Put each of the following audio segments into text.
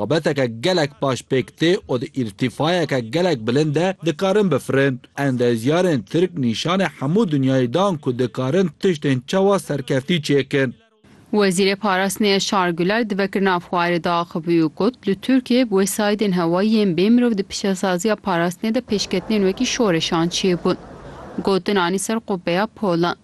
Babeteke gelek baş pêk tê û di îrtîfayeke gelek bilind de dikarin bifirin. Endezyarên Tirk nîşanê hemû dinyayê dan ku dikarin tiştên çawa serkeftî çêkin. Wezîrê Parastinê Yaşar Güler di vekirina fuarê de axivî û got, Li Tirkiyê bi wesayîdên hewayî yên bê mirov di piştesaziya parastinê de pêşketinên wekî şoreşan çêbûn. Gotin anî ser qubeya polan.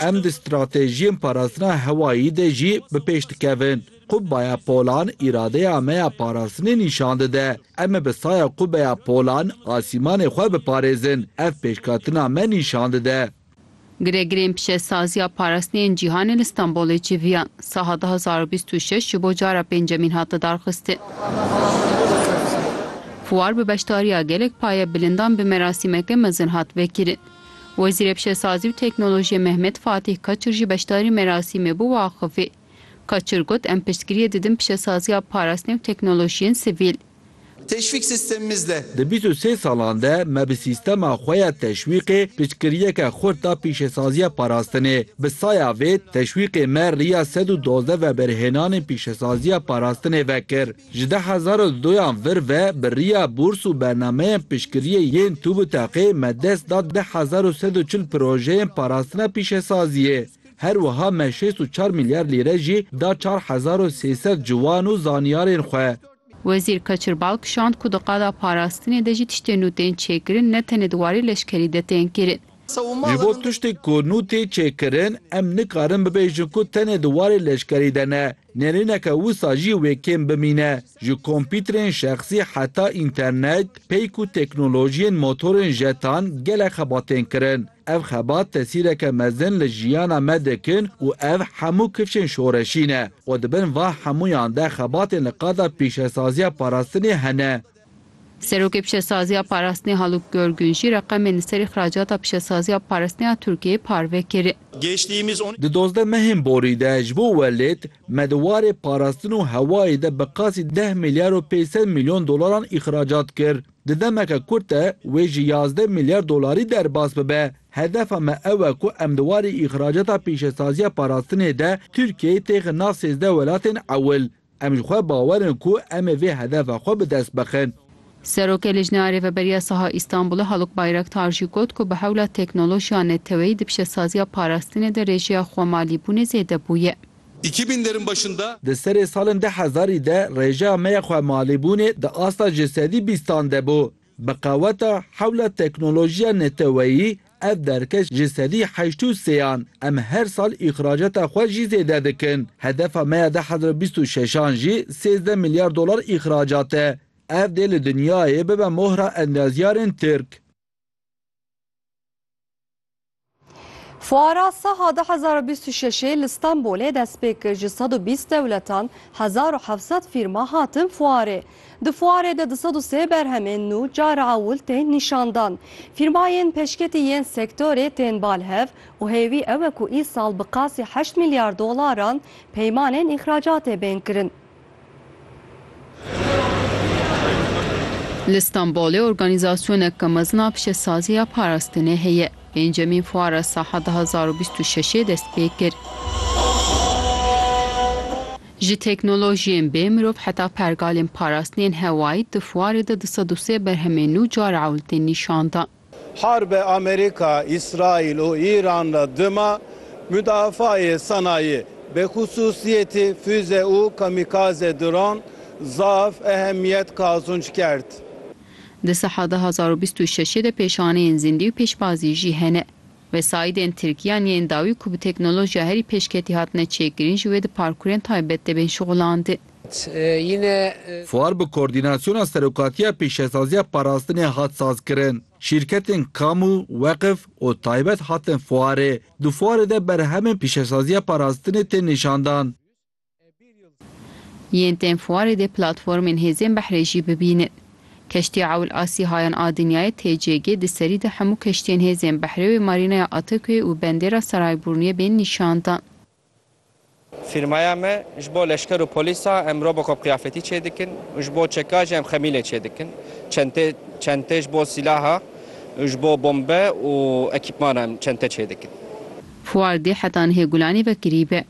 Em di stratejiyên parastina hewayî de jî bi pêş dikevin. Qubbeya polan îradeya me ya parastinê nîşan dide. Em ê bi saya qubbeya polan asîmanê xwe biparêzin. Ev pêşketina me nîşan dide. Giregirên pişesaziya parastinê yên cîhanê li Stenbolê civiyan. Saha du hezar û bîst û şeş ji bo cara pêncemîn hat lidarxistin. Fuar bi beşdariya gelek payebilindan bi merasîmeke mezin hat vekirin. Wezîrê Pişesazî û Teknolojiyê Mehmet Fatîh Kaçur jî beşdarî merasîmê bû û axivî. Kaçur got, Em piştgiriyê didin pişesaziya parastinê û teknolojiyên sivîl. Teşvîk sistemimizde. Di bîst û sê salan de me bi sîstema xwe ya teşwîqê piştgiriyeke xurt da pîşesaziya parastinê. Bi saya vê teşwîqê me riya sed û duwazdeh veberhênanên pîşesaziya parastinê vekir. Ji deh hezar û doyan vir ve bi riya bûrs û bernameyên piştgiriyê yên TUBİTAK'ê me dest da deh hezar û sed û çil projeyên parastina pîşesaziyê. Her wiha me şêst û çar milyar lîre jî da çar hezar û sê sed ciwan û zanyarên xwe. Wezîr Kaçir Balk şand ku di qada parastinê de jî tiştên nû tên çêkirin ne tenê di warê leşkerî de tên kirin. Ji bo tiştên ku nû tê çêkirin em nikarin bibêjin ku tenê di warê leşkerî de ne. Nêrîneke wisa jî wê kêm bimîne. Ji kompîterên şexsî heta înternet, peyk û teknolojiyên motorên jetan gelek xebat tên kirin. Ev xebat tesîreke mezin li jiyana me dikin û ev hemû kifşên şoreşî ne. Xwe di bin van hemûyan de xebatên li qada pîşesaziya parastinê hene. Serokê Pişesaziya Parastinê Haluk Görgün jî reqemên li serî xiracata pişesaziya parastinê ya Tirkiyeyê parve kir. Di dozdeh mehên borî de ji bo welêt me di warê parastin û hewayê de bi qasî deh milyar û pênc sed milyon dolaran îxracat kir. Di demeke kurt de wê ji yazdeh milyar dolarî derbas bibe. Hedefa me ew e ku em di warê îxracata pîşesaziya parastinê de Tirkiyeyê têxin nav sêzdeh welatên ewil. Em ji xwe bawer in ku em ê vê hedefa xwe bi dest bixin. Serokê Lijneya Rêveberiya Saha Îstanbulê Haluk Bayraktar jî got ku bi hewla teknolojiya neteweyî di piştesaziya parastinê de rê jêya xwemalîbûnê zêde bûye. Îki binlerin başında. Di serê salên du hezarî de rêjeya me ya xwemalîbûnê di asta ji sedî bîstan de bû. Bi qeweta hewla teknolojiya neteweyî ev derkeş ji sedî heşt û sê an em her sal îxracata xwe jî zêde dikin. Hedefa me ya du hezar û bîst û şeş an jî sêzdeh milyar dolar îxracat e. Ev dê li dinyayê bibe mohra endaziyarên Tirk. Fuara Saha du hezar û bîst û şeşê li Stenbolê dest pê kir ji sed û bîst dewletan hezar û heft sed fîrma hatin fuarê. Di fuarê de du sed û sê berhemên nû cara ewil tên nîşandan. Fîrmayên pêşketî yên sektorê tên bal hev û hêvî ew e ku îsal bi qasî heşt milyar dolaran peymanên îxracatê bên kirin. Li Stenbolê organîzasyoneke mezin a pişesazî ya parastinê heye. Pêncemîn Fuara Saha du hezar û bîst û şeşê dest pê kir. Ji teknolojiyên bê mirov heta pergalên parastinên hewayî di fuarê de du sed û sê berhemên nû cara ewil tên nîşan dan. Harbe Amerîka, Îsraîl û Îran re dima mudafaayê sanayî, bi xisûsîyetî fûze û kamîkaze dron zaf ehemîyet qazûnc kerd. Di saha du hezar û bîst û şeşê de pêşaneyên zîndî û pêşbazî jî hene. Wesaîdên Tirkî an yên dawî ku bi teknolojîya herî pêşketî hatine çêkirin ji wê di parkûrên taybet de bên şixulandin. Fuar bi Koordînasyona Serokatiya Pêşesaziya Parastinê hat sazkirin. Şîrketên kamû, weqif û taybet hatin fuarê. Di fuarê de berhemên pêşesaziya parastinê tên nîşandan. Yên tên fuarê dê platformên hêzên behrê jî bibînin. Keştiya Ewl a Sîhayan a Dinyayê, TCG, di serî de hemû keştiyên hêzên behrê wê Marînaya Atakuyê û Bendêra Saraybûrniyê bên nîşandan. Fîrmaya me ji bo leşker û polîsa em Robocop qiyafetî çêdikin û ji bo çeka jî em xemîlê çêdikin. Çentê çentê ji bo sîlaha û ji bo bombe û ekîpmana em çente çêdikin. Fuar dê heta nihê Gulanê ve kirî be.